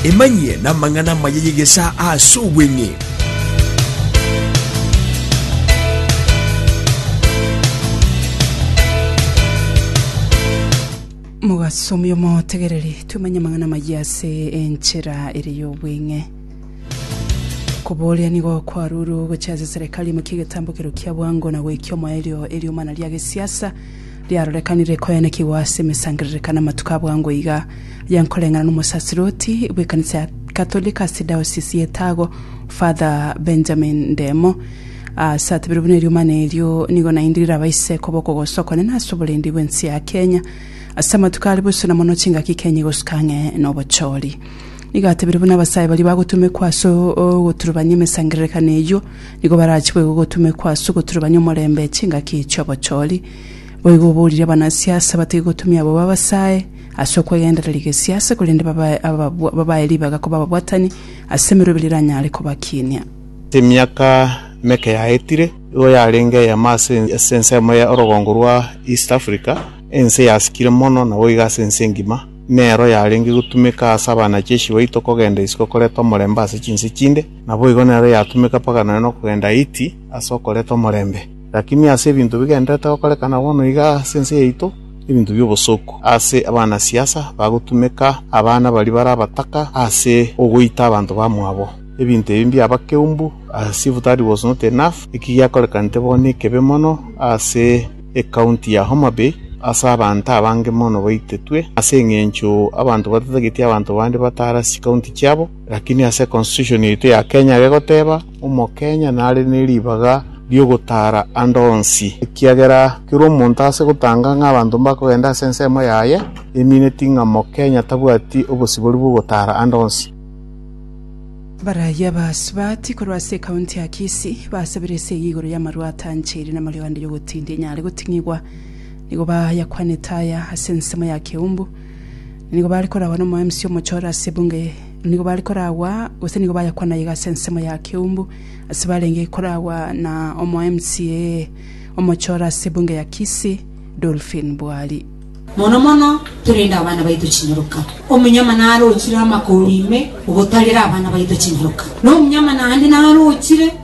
Emanyie namang'ana amaya y'egesaa ase obweng'e. mogasomia omotegereri twemanye amang'ana amaya ase enchera ere y'obweng'e koboria nigo kwaruru gochia ase serikali emokia egetambo kero kia bwango na goikia omoerio eriomana ria gesiasa riarorekanire koyanekigwa ase emesangererekano amatuko abwo ango iga, aya nkoreng'ana n'omosaserdoti bw'ekanisa ya Katoliki ase diocese ya Etago, Father Benjamin Ndemo, ase atebeirwe buna eriomana erio nigo naende riraba isiko b'okogosa okonene ase oborendi bw'ense ya Kenya ase amatuko are bosio na mono chingaki Kenya igosuka ang'e n'obochori. Nigo atebeirwe buna abasae baria bagotumekwa ase ogoturubania emesangererekano eyio, Nigo barachikwe gogotumekwa ase ogoturubania omorembe chingaki chi'obochori. Boigo obourire abanasiasa bataiyo gotumia abwo babasae ase okwegendereria gesiasa, korende babae ababwa- babae ribaga koba ababwatani ase emerwebe riranyare kobakinia. Emiaka meke yaetire, igo yarenge eyemo ase ase ensemo ya orogongo rwa East Africa, ense yasikire mono na boigo ase ense engima, nero yarenge gotumeka ase abanacheshi baito kogenda isiko koreta omorembe ase chinse chinde, Naboigo nero yatumeka mpaka nonya nokogenda Haiti ase okoreta omorembe. Lakini ase ebinto bigendererete gokorekana bono iga ase ense yaito, ebinto biobosoku ase abana siasa bagotumeka abana baria bare abataka ase ogoita abanto bamwabo. Ebinto ebi mbiaba keumbu as if that was not enough, eki giakorekanete bono ekebe mono ase ecounty ya Homabay ase abanto abange mono baitetwe ase engencho abanto batatageti abanto bande batara ase chicounty chiabo. Lakini ase constitution yaito ya Kenya gegoteba omokenya nare neribaga ri'ogotara ande onsi, ekiagera kera omonto ase gotanga ng'a abanto mbakogenda ase ensemo yaye emineti ng'a mokenya tabwati obosibori bw'ogotara ande onsi. Abarayia ba Sibati korwa ase ekaunti ya Kisii basabire esegi igoro y'amarwa atancheire n'amareo ande y'ogotindia enyare goting'igwa. Nigo bayakwanete aya ase ensemo ya Keumbu. Nigo bare koragwa nomoemsi omochore ase ebunga eye. Nigo bare koragwa, gose nigo bayakwana iga ase ensemo ya Keumbu, ase barenge koragwa na omoemsi ee omochore ase ebunga ya Kisi, Dolphin Bwali. Mono mono torende abana baito chinyaroka. Omonyama narochire amakoro ime ogotarera abana baito chinyaroka. Na omonyama naende narochire.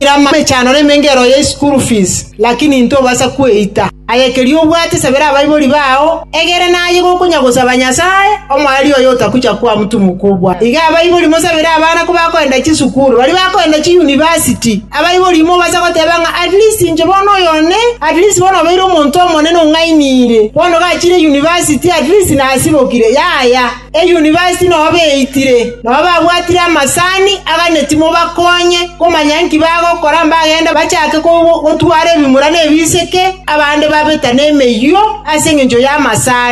Ira amechando na emengero ye isukuru fizi, lakini intwe obasa kweita. Aye keria obwate sabera abaibori bao, egere naye gokonyagosaba Nyasae, omoerio oye otakucha kwamutumwa kobua. Iga abaibori mosabere abana kobakoenda chisukuru, baria bakoenda chiyunivasiti. Abaibori mobasa goteba ng'a at least inche bono oyo one, at least bono obeire omonto omonene ong'ainire, bono gachire yunivasiti at least nasibokire. Yaya. Eyunivasiti noa beitire, noa babwatire amasani aganeti mobakonye komanya inki bagokora mbagende bachake gotwara ebimura ne ebiseke, abande babeta nemeyio ase engencho y'amasani.